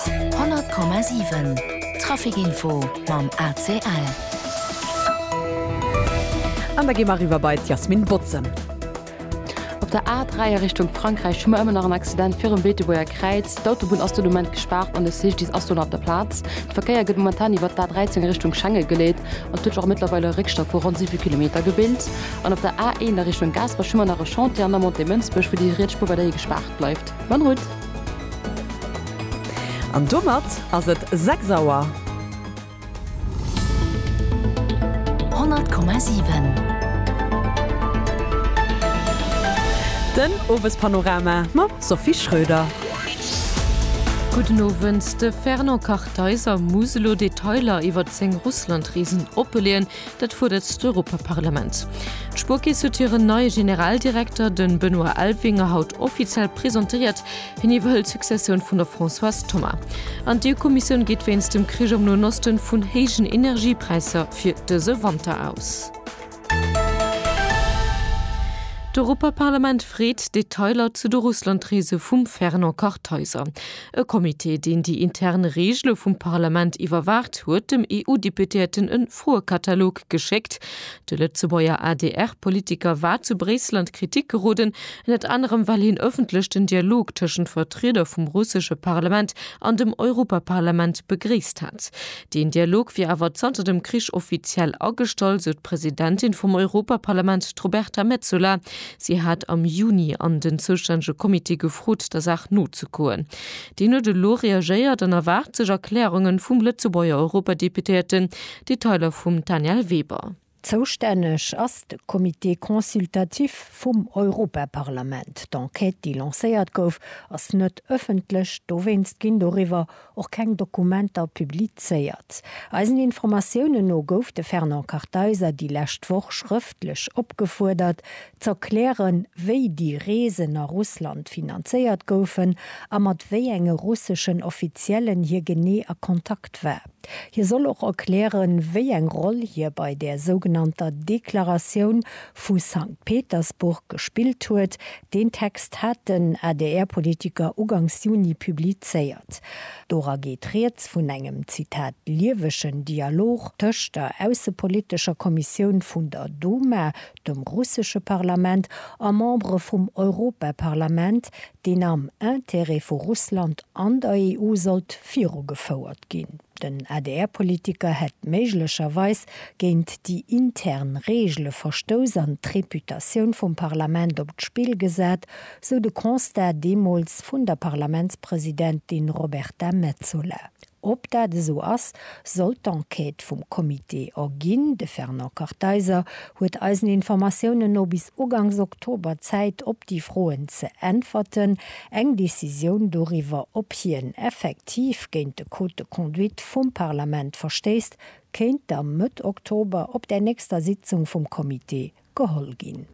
100,7 Traficinfo mam ACL. An da gi mer eriwwer bei d'Yasmine Botz-en. Op der A3 a Richtung Frankräich hu mer ëmmer nach en Accident virum Beetebuerger Kräiz. D'Autobunn ass do de Moment gespaart an de Sichdienst ass do nach op der Plaz. De Verkéier gëtt momentan iwwert d'A13 a Richtung Schenge geleet an et huet sech och mëttlerweil e Réckstau vu ronn 7 Kilometer gebilt. An op der A1 a Richtung Gaasperech hu mer nach e Chantier an der Montée Mënsbech, wou déi riets Spuer weiderhi gespaart bleift. Bonne route! An domat ass et 6 Auer. 100,7. Den Owespanorama mam Sophie Schröder. Gudden Owend, De Fernand Kartheiser muss elo Detailer iwwert seng Russlandreesen oppe leeën. Dat fuerdert d'Europaparlament. D'Spuerkeess huet hiren neie Generaldirekter, de Benoît Elvinger, haut offiziell presentéiert. Hien iwwerhëlt d'Successioun vun der Françoise Thomas. An d'EU-Kommissioun geet wéinst dem Krich am Noen Osten vun héijen Energiepräisser fir dëse Wanter aus. D'Europaparlament freet Detailer zu de Russlandreese vum Fernand Kartheiser. E Comité, deen déi intern Regele vum Parlament iwwerwaacht, huet dem EU-Deputéierten e Froekatalog geschéckt. De Lëtzebuerger ADR-Politiker war zu Bréissel an d'Kritik geroden, ënnert anerem well hien ëffentlech den Dialog tëschent Vertrieder vum russesche Parlament an dem Europaparlament begréisst hat. Deen Dialog wier awer zanter dem Krich offiziell agestall, sou d'Presidentin vum Europaparlament, d'Roberta Metsola. Si hat am Juni an den zoustännege Comité gefrot, der Saach nozekoen. Deen huet elo reagéiert an erwaart sech Erklärungen vum Lëtzebuerger Europadeputéierten. Detailer vum Danièle Weber. Zoustänneg ass de Comité consultatif vum Europaparlament. D'Enquête, déi lancéiert gouf, ass net ëffentlech. Dowéinst ginn doriwwer och keng Dokumenter publizéiert. Eisen Informatiounen no gouf de Fernand Kartheiser déi lescht Woch schrëftlech opgefuerdert, z'erklären, wéi déi Reesen a Russland finanzéiert goufen a mat wéi enge russeschen Offiziellen hie genee a Kontakt war. Hie soll och erklären, wéi eng Roll hie bei där sougenannter Deklaratioun vu Sankt Petersburg gespillt huet. Deen Text hat den ADR-Politiker ugangs Juni publizéiert. Dora geet rieds vun engem Zitat liewegen Dialog tëscht der aussepolitescher Kommissioun vun der Duma, dem russesche Parlament, a Membere vum Europaparlament, deen am Intérêt vu Russland an der EU sollt virugefouert ginn. Den ADR-Politiker hätt méiglecherweis géint déi intern Reegele verstouss an d'Reputatioun vum Parlament op d'Spill gesat, sou de Constat deemools vun der Parlamentspresidentin Roberta Metsola. Ob dat esou ass, sollt d'Enquête vum Comité erginn. De Fernand Kartheiser huet eisen Informatiounen no bis ugangs Oktober Zäit op déi Froen ze äntwerten. Eng Decisioun doriwwer, ob hien effektiv géint de Code de conduite vum Parlament verstéisst, kéint da Mëtt Oktober op där nächster Sitzung vum Comité geholl ginn.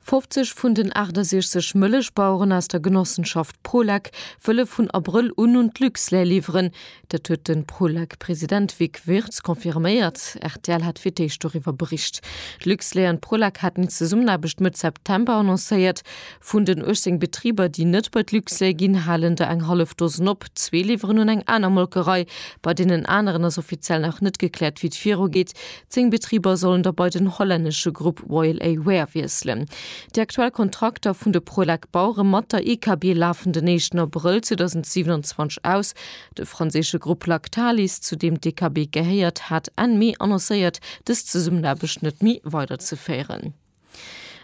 50 vun den 68 Mëllechbaueren aus der Genossenschaft Prolek wëlle vun Abrëll un un d'Luxlait liwweren. Dat huet de Prolek-President Vic Wirtz confirméiert. Rtl hat fir d'éischt doriwwer bericht. D'Luxlait an d'Prolek haten eng Zesummenaarbecht Mëtt September annoncéiert. Vun den 18 Betriber, déi net bei d'Luxlait ginn, halen der eng hallef Dosen op. Zwee liwweren un eng aner Molkerei. Bei deenen aneren ass offiziell nach net gekläert, wéi et virugeet. Zéng Betriber sollen da bei den hollännesche Grupp Royal A Wear wiesselen. Déi aktuell Kontrakter vun de Prolec Bauere mat der IKB lafen den éischten Abrëll 2027 aus. De franséische Grupp Lactalis, zu deem d'IKB gehéiert, hat Enn Mee annoncéiert, dës Zesummenaarbecht net méi weiderzeféieren.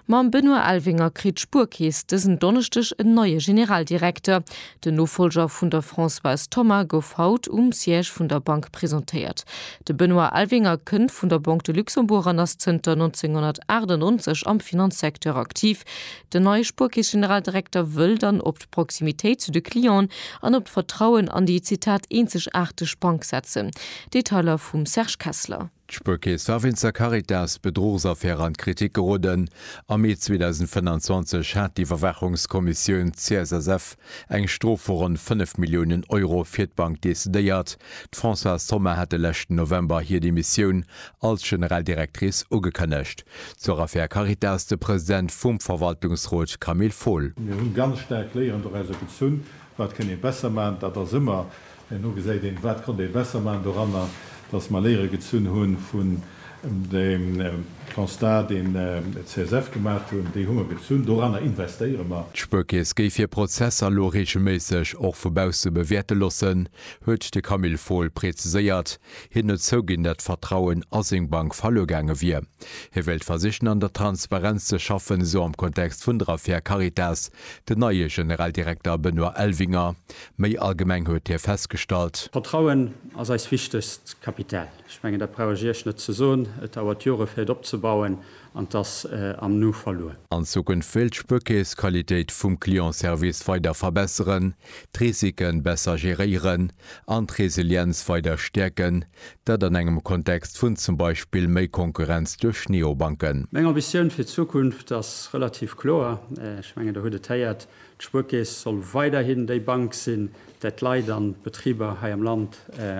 Mam Benoît Elvinger kritt d'Spuerkeess dësen Donneschdeg en neie Generaldirekter. Den Nofollger vun der Françoise Thoma gouf haut um Siège vun der Bank presentéiert. De Benoît Elvinger kënnt vun der Banque de Luxembourg an ass zënter 1998 am Finanzsecteur aktiv. Den neie Spuerkeess-Generaldirekter wëll dann op d'Proximitéit zu de Clienten an op d'Vertrauen an déi, Zitat, eenzegaarteg Bank setzen. Detailer vum Serge Kessler. D'Spuerkeess war wéinst der Caritas-Bedruchsaffär an d'Kritik geroden. Am Mee 2025 hat d'Iwwerwaachungskommissioun CSSF eng Strof vu ronn 5 Milliounen Euro fir d'Bank decidéiert. D'Françoise Thoma hat de leschten November hir Demissioun als General Directrice ugekënnegt. Zur Affär Caritas de President vum Verwaltungsrot Camille Fohl. Mir hunn ganz staark léierend och aus der Gezunn, wat kënn ee besser maachen. Dat ass ëmmer Herno gesäit een, wat konnt ee besser maachen doranner, datt mer Léiere gezunn hu vun deem Constat, deen d'CSF gemaacht hunn. Déi hu mer gezunn. Doranner investéiere mer. D'Spuerkeess géif hir Prozesser elo reegelméisseg och vu bausse bewäerte loossen, huet de Camille Fohl preziséiert. Hien huet zouginn, datt d'Vertrauen a seng Bank verluer gaange wier. Hie wéilt versichen, an der Transparenz ze schaffen, esou am Kontext vun der Affär Caritas den neie Generaldirekter Benoît Elvinger. Méi allgemeng huet hie festgestallt. Vertrauen ass eist wichtegst Kapital. Ech mengen, dat brauch ech Iech net ze soen. Et dauert Jore fir et opzebauen an et ass am Nu verluer. An Zukunft wéilt d'Spuerkeess d'Qualitéit vum Clientservice weider verbesseren, d'Risike besser geréieren an d'Resilienz weider stäerken, dat an engem Kontext vun zum Beispill méi Konkurrenz duerch Neobanken. Meng Ambitioun fir d'Zukunft ass relativ kloer. Ech mengen, Der hutt et héiert, D'Spuerkeess soll weiderhin déi Bank sinn, där d'Leit an d'Betriber hei am Land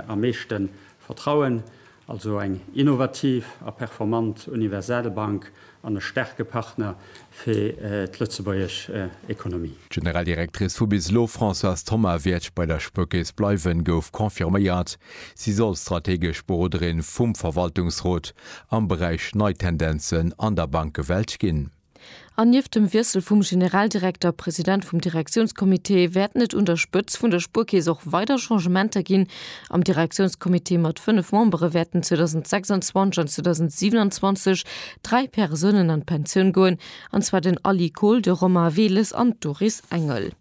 am meeschte vertrauen, also eng innovativ a performant universal Bank an e staarke Partner fir d'lëtzebuergesch Ekonomie. D'Generaldirectrice vu bis elo, Françoise Thoma, wäert bei der Spuerkeess bleiwen, gouf confirméiert. Si soll strategesch Beroderin vum Verwaltungsrot am Beräich nei Tendenzen an der Bankewelt ginn. An nieft dem Wiessel vum Generaldirekter, President vum Direktiounscomité, wäerten et un der Spëtz vun der Spuerkeess och weider Changementer ginn. Am Direktiounscomité mat 5 Membere wäerten 2026 an 2027 dräi Persounen an d'Pensioun goen, an zwar den Aly Kohl, de Romain Weles an d'Doris Engel.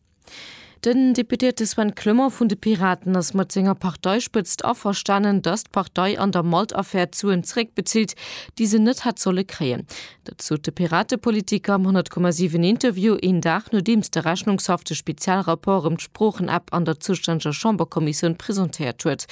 Den Deputéierte Sven Clement vun de Piraten ass mat senger Parteispëtzt averstanen, datt d'Partei an der Malt-Affär d'Suen zeréckbezilt, déi se net hätt solle kréien. Dat sot de Piratepolitiker am 100,7 Interview een Dag nodeems de Rechnungshaff de Spezialrapport ëm d'Sproochen-App an der zoustänneger Chamberkommissioun presentéiert huet.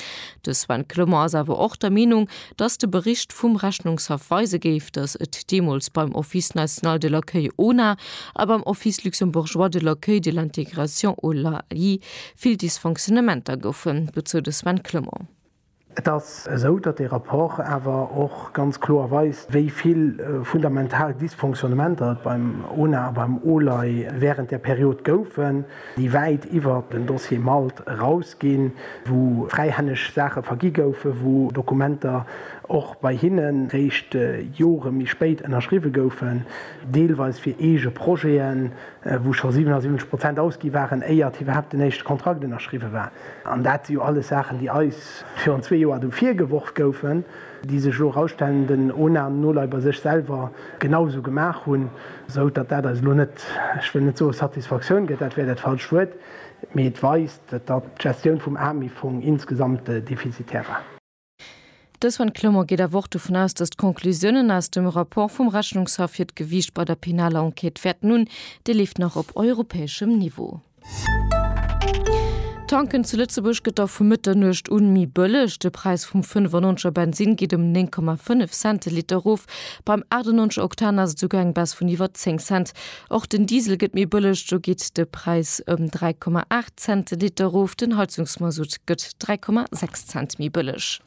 De Sven Clement ass awer och der Meenung, dass de Bericht vum Rechnungshaff weise géif, dass et deemools beim Office national de l'accueil, ONA, a beim Office luxembourgeois de l'accueil, de l'intégration, OLAI, vill Dysfonctionnementer goufen, dozou de Sven Clement. Et ass esou, datt dee Rapport awer och ganz kloer weist, wéi vill fundamental Dysfonctionnementer et beim ONA a beim OLAI wärend där Period goufen. déi wäit iwwert den Dossier Malt eraus ginn, wou fräihänneg Saache vergi goufen, wou Dokumenter och bei hinne réischt Jore méi spéit ënnerschriwwe goufen, deelweis fir eege Projeten, wou scho 77 Prozent ausgi waren, éiert iwwerhaapt den éischte Kontrakt ënnerschriwwe war. An dat si jo alles Saachen, déi eis virun zwee Joer do virgeworf goufen. déi sech elo eraustellenden Ohnamen no leider sech selwer genau esou gemaach hunn, esou datt dat eis elo net, ech wëll net soe Satisfaktioun gëtt, dat wär dat falscht Wuert, mee et weist, datt d'Gestioun vum AMIF-Fong insgesamt defizitär war. Dës Van Clement geet awer och dovun aus, datt d'Conclusiounen aus dem Rapport vum Rechnungshaff hiert Gewiicht bei der penaler Enquête wäerten hunn. Dee leeft nach op europäeschem Niveau. Tanken zu Lëtzebuerg gëtt da vu Mëtternuecht un méi bëlleg. De Präis vum 95 er Bensinn geet ëm 9,5 Cent de Liter erof. Beim 98 er Oktan ass et esouguer eng Baisse vun iwwer 10 Cent. Och den Diesel gëtt méi bëlleg, do geet de Präis ëm 3,8 Cent de Liter erof. Den Heizungsmasutt gëtt 3,6 Cent méi bëlleg.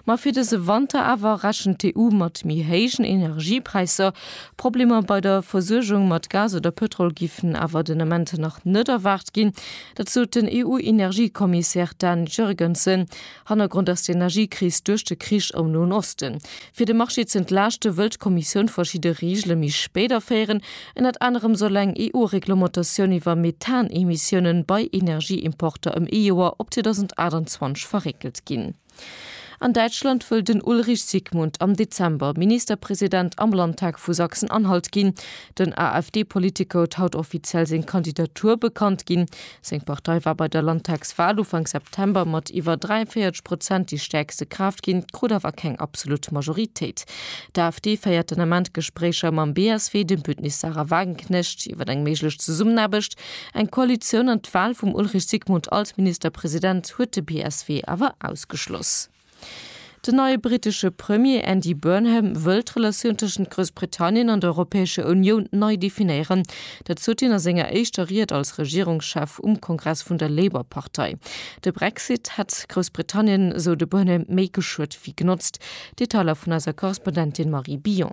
Ma fir dëse Wanter awer rechent d'EU mat méi héijen Energiepräisser. Problemer bei der Versuergung mat Gas oder Pëtrol giffen awer den Ament nach net erwaart ginn. Dat sot den EU-Energiekommissär Dan Jurgensen. Hannergrond ass d'Energiekris duerch de Krich am Noen Osten. Fir de Marché z'entlaaschte wëll d'Kommissioun verschidde Reegele méi spéit aféieren. Ënnert anerem soll eng EU-Reglementatioun iwwer Methanemissioune bei Energieimporter ëm ee Joer op 2028 verréckelt ginn. An Däitschland wëll den Ulrich Sigmund am Dezember Ministerpresident am Landtag vu Sachsen-Anhalt ginn. Den AfD-Politiker huet haut offiziell seng Kandidatur bekannt ginn. Seng Partei war bei der Landtagswal Ufank September mat iwwer 43 Prozent déi stäerkste Kraaft ginn, krut awer keng absolut Majoritéit. D'AfD féiert den Ament Gespréicher mam BSW, dem Bündnis Sarah Wagenknecht, iwwer eng méiglech Zesummenaarbecht. Eng Koalitioun an d'Wal vum Ulrich Sigmund als Ministerpresident huet de BSW awer ausgeschloss. Den neie brittesche Premier Andy Burnham wëll d'Relatioun tëschent Groussbritannien an der Europäescher Unioun nei definéieren. Dat sot hien a senger éischter Ried als Regierungschef um Kongress vun der Labour-Partei. De Brexit hätt Groussbritannien, esou de Burnham, méi geschuet wéi genotzt. Detailer vun eiser Korrespondentin Marie Billon.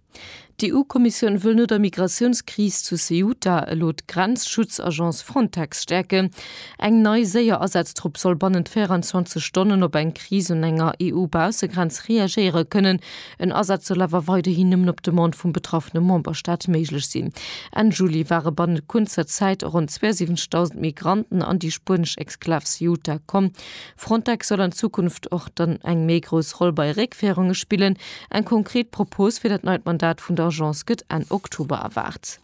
D'EU-Kommissioun wëll no der Migratiounskris zu Ceuta elo d'Grenzschutzagence Frontex stäerken. Eng nei séier Asatztrupp soll bannent 24 Stonnen op eng Kris un enger EU-Baussegrenz reagéiere kënnen. En Asaz soll awer weiderhin nëmmen op Demande vum betraffene Memberstaat méiglech sinn. Enn Juli ware bannent kuerzer Zäit ronn 72.000 Migranten an déi spuenesch Exklav Ceuta komm. Frontex soll an Zukunft och dann eng méi grouss Roll bei Réckféierunge spillen. Eng konkret Propos fir dat neit Mandat vun der Agence gëtt Enn Oktober erwaart.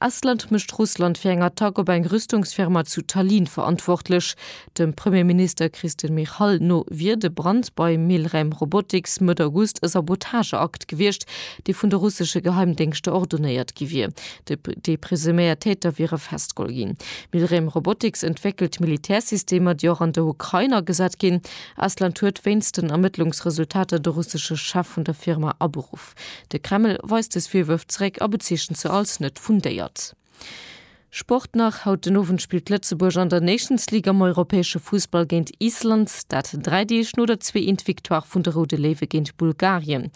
Estland mécht Russland fir eng Attack op eng Rüstungsfirma zu Tallinn verantwortlech. Dem Premierminister Kristen Michal no wier de Brand bei Milrem Robotics Mëtt August e Sabotageakt gewiescht, dee vun de russesche Geheimdéngschter ordonéiert gi wier. Déi presuméiert Täter wiere festgeholl ginn. Milrem Robotics entwéckelt Militärsystemer, déi och an der Ukrain agesat ginn. Estland huet wéinst den Ermëttlungsresultater de russesche Chef vun der Firma aberuff. De Kreml weist dës Virwërf zeréck a bezeechent se als net fundéiert. Sport nach, Haut den Owend spillt Lëtzebuerg an der Nations League am europäesche Fussball géint Island. Dat dräi Deeg no der Zwee-Eent Victoire vun de Roude Léiwe géint Bulgarien.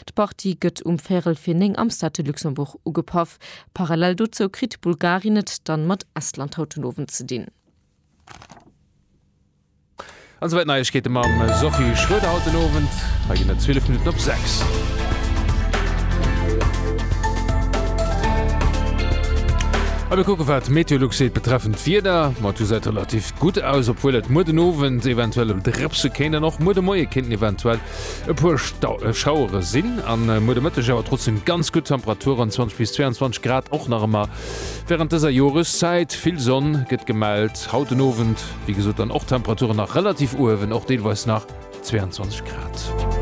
D'Partie gëtt um Véierel fir néng am Stade de Luxembourg Ugepaff. Parallel dozou kritt Bulgarien et dann mat Estland haut den Owend ze dinn. An souwäit Neiegkeete mam Sophie Schroeder haut den Owend. Hei ginn et 12 Minutten op 6. A mir kucke wat d'Meteolux seet betreffend d'Wieder. Ma du seit relativ gutt aus, obwuel et muer den Owend eventuell em drëpse kéint an och muer de Moie kéinten eventuell E puer Schauere sinn am muer de Mëtteg, awer trotzdeem ganz gutt Temperaturen, 20 bis 22 Grad, och nach ëmmer wärend dëser Joreszäit. Vill Sonn gëtt gemellt. Haut den Owend, wéi gesot, dann och d'Temperaturen nach relativ uewen, och deelweis nach 22 Grad.